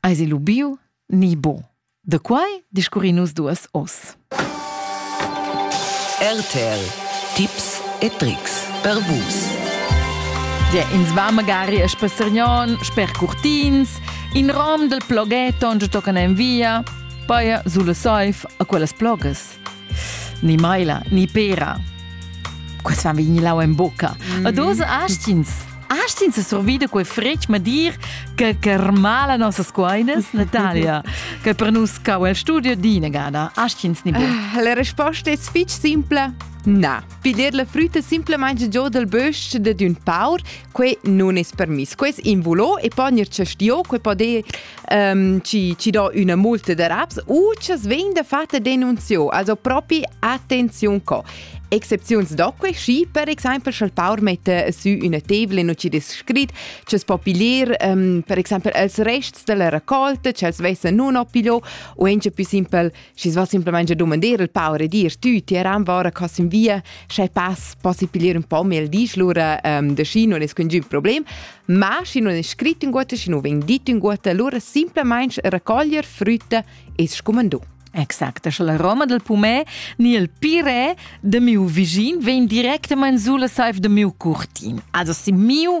Eis il ubiu ni bo? Da quai discurrin nus duas oz. RTL Tipps e Tricks per Vus. Dir ins va magari a Spassargnon sper Curtins, in rom del ploghetto giu toccan en via, paia sulla saif a quellas plogas. Ni maila, ni pera. Questa vegni lau en bocca. Mm. Ma dos astins Astins survida quei fretg ma dir che carmala nossas coinas Natalia, che per nus cau el studio dinegada. Astins ni ah, La risposta è fitch simple. Na, piglier la frutta simplemente giù dal bösch de d'un paur, quei non es permiss. Ques invulo e ponir cestio, quei poder um, ci, ci do una multa de raps u ci vegn da fatta denunzio, also propi attenzione co. Excepziuns do que schi, per exempel, sch'el paur mette su una tevla e non ci descrit, ci po piglier, um, per exempel, els rests della raccolta, ci els vessa non o piglio, o ence più simpel, Schi va simplemente dumandar il paur e dir tü, ti eran vora cos in via, sche pass possi piglier un po mel disch lura um, de schi non es quin giu problem, ma schi non è scrit in guotta, schi non veng dit in guotta, allora simplemente raccoglier frutta e scumandù. Exact, sche la roma del pumè ni il pirè de miu visin vegn directament sulla saif de miu curtin. Also si miu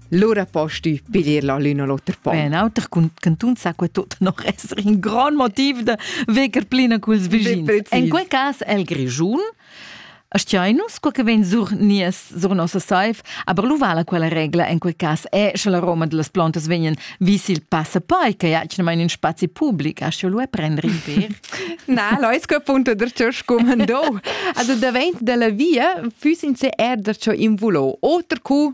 Lura posti piglier la l'un o l'oter pon. En auter cantun sa que tot non esser in grand motiv da veger plina culs vischins. En quei cas el Grischun Astiainus, quel che vegn sur nies, sur nossa saif, aber lu vala quella regla en quei cas è, sche la roma delle plantas vegnan vis il passapai, che ha in spazi pubblic, asche lu e prendere in per. Na, lois que punto der ciò scumandò. Also davent della via füssen se er der ciò invulò. Oter cu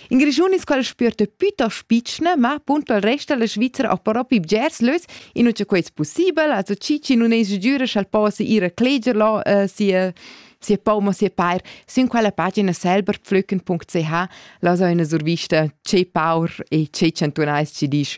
In Grischun es quel spüerta pütost pitschna, ma appunto il rest della Svizzera ha però più bgers lös, inua cha quai es pussibel. Also chi chi nun es giüra scha'l possa ir a cleger là äh, sia sia pom o sia pair, sün quella pagina selberpflücken.ch lasa üna survista che paur e che chantunais ci disch